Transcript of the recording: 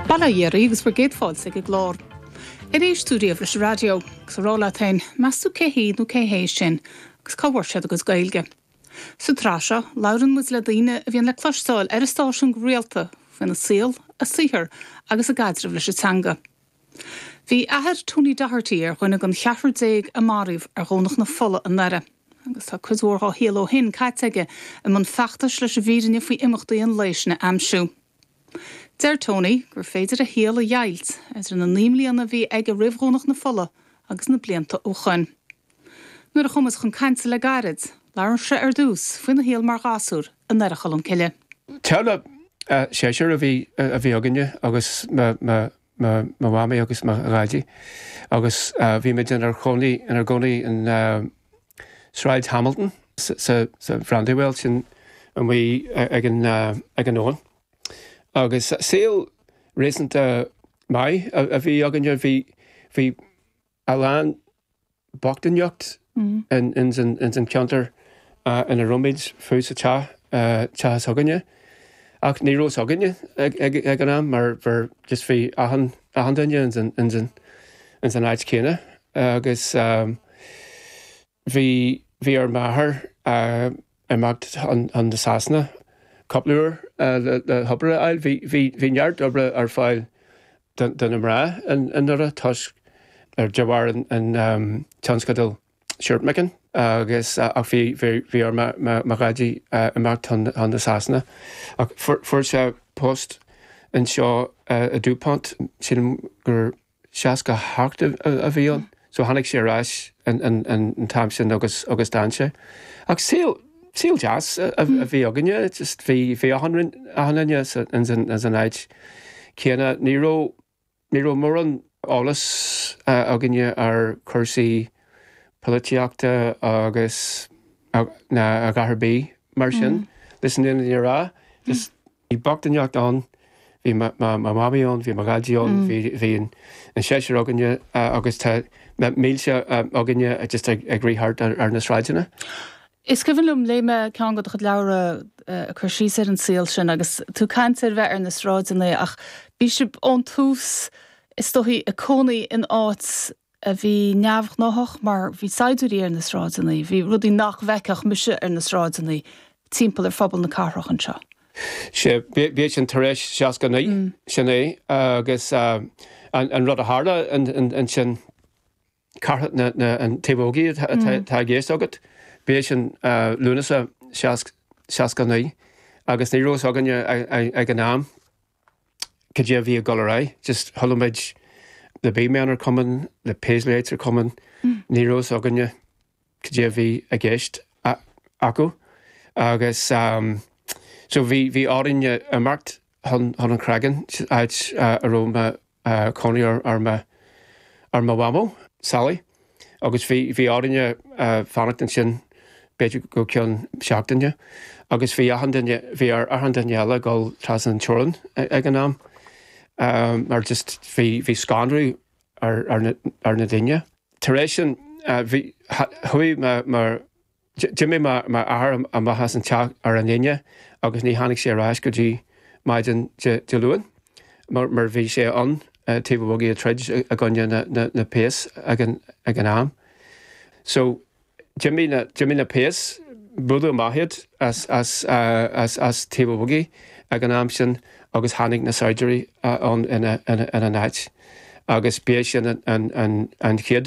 Bail ó Dhia oraibh agus bhur gcéad fáilte chuig an gclár. Ar éist tú riamh leis an raidió? Agus a rá leat féin, meas tú cé hí nó cé hé sin agus cá bhfuair siad a gcuid Gaeilge? Sa tsraith seo, labhrann muid le daoine a bhíonn le cloisteáil ar an stáisiún go rialta faoina saol, a saothar agus a gcaidreamh leis an teanga. Bhí athair Tony Doherty ar dhuine den cheathrar déag a maraíodh ar Dhomhnach na Fola i nDoire agus tá cuid mhór dá shaol ó shin caite aige i mbun feachtais leis an bhfírinne faoi imeachtaí an lae sin a aimsiú. Deir Tony gur féidir a shaol a dheighilt idir na naoi mbliana a bhí aige roimh Dhomhnach na Fola agus na blianta ó shin. Nuair a chuamar chun cainte le gairid, labhair muid ar dtús faoina shaol mar ghasúr i nDoire Cholm Cille. Teaghlach seisear a bhí againne agus mo mhamaí agus mo dhaidí agus bhí muid inár gcónaí in Sráid Hamilton, sa Bhrandywell sin in aice leis an abhainn. Agus saol réasúnta maith a bhí againne. Bhí. a lán bochtaineacht ins an cheantar ina raibh muid, fiú sa teach s'againne, ach ní raibh a fhios againne ag an am mar just bhí achan duine ins an áit chéanna agus. Bhí, bhí ar m'athair imeacht chun na Sasana cúpla uair le hobair a fháil. Bhí, bhí, bhí neart oibre ar fáil do na mná i nDoire toisc, ar, de bharr an tionscadal shirt making agus, ach bhí, bhí ar mo dhaidí imeacht chun na Sasana ach fuair, fuair sé post anseo i DuPont, sílim gur. 68 a bhí ann, so tháinig sé ar ais an t-am sin agus d'fhan sé. Ach saol, saol deas a bhí againne, just bhí, bhí achan, achan duine ins an áit chéanna. Ní raibh, ní raibh mórán eolas againne ar chúrsaí polaitíochta agus, ná a dhath ar bith mar sin, leis an fhírinne a rá. Bhí bochtaineacht ann, bhí mo mhamaí ann, bhí mo dhaidí ann, bhí an seisear againne agus na mílte againne just ag rith thart ar na sráideanna. Is cuimhin liom, léigh mé ceann de do chuid leabhra ag cur síos ar an saol sin agus tú ag caint ar bheith ar na sráideanna ach bhí sibh ón tús is dóigh i gcónaí in áit a bhí neamhghnáthach mar bhí saighdiúirí ar na sráideanna, bhí rudaí nach bhfeicfeadh mise ar na sráideanna timpeall ar phobal na cathrach anseo. Sea, b'é sin tar éis seasca a naoi, sin é agus an rud a tharla ansin, Cath Thaobh an Bhogaigh atá i gceist agat, b'é sin Lúnasa seasca a naoi agus ní raibh fhios againne ag an am, cad é a bhí ag dul ar aghaidh, just chuala muid na big men are coming, na Paisleys are coming, ní raibh fhios againne cad é a bhí i gceist acu agus so bhí orainn imeacht chun an Chreagáin, áit a raibh cónaí ar mo mhamó, Sally, agus bhí orainne fanacht ansin b'fhéidir go ceann seachtaine agus bhí achan duine, bhí ar achan duine eile dhul trasna an teorann ag an am mar just bhí scanradh ar na daoine. Tar éis sin, chuaigh mo. D'imigh m'athair amach as an teach ar an Aoine agus ní tháinig sé ar ais go dtí maidin Dé Luain mar bhí sé i dTaobh an Bhogaigh ag troid i gcoinne na péas ag an am. So, d'imigh na péas, buaileadh amach iad as Taobh an Bhogaigh ag an am sin agus tháinig na saighdiúirí ann ina n-áit agus b'é sin an chéad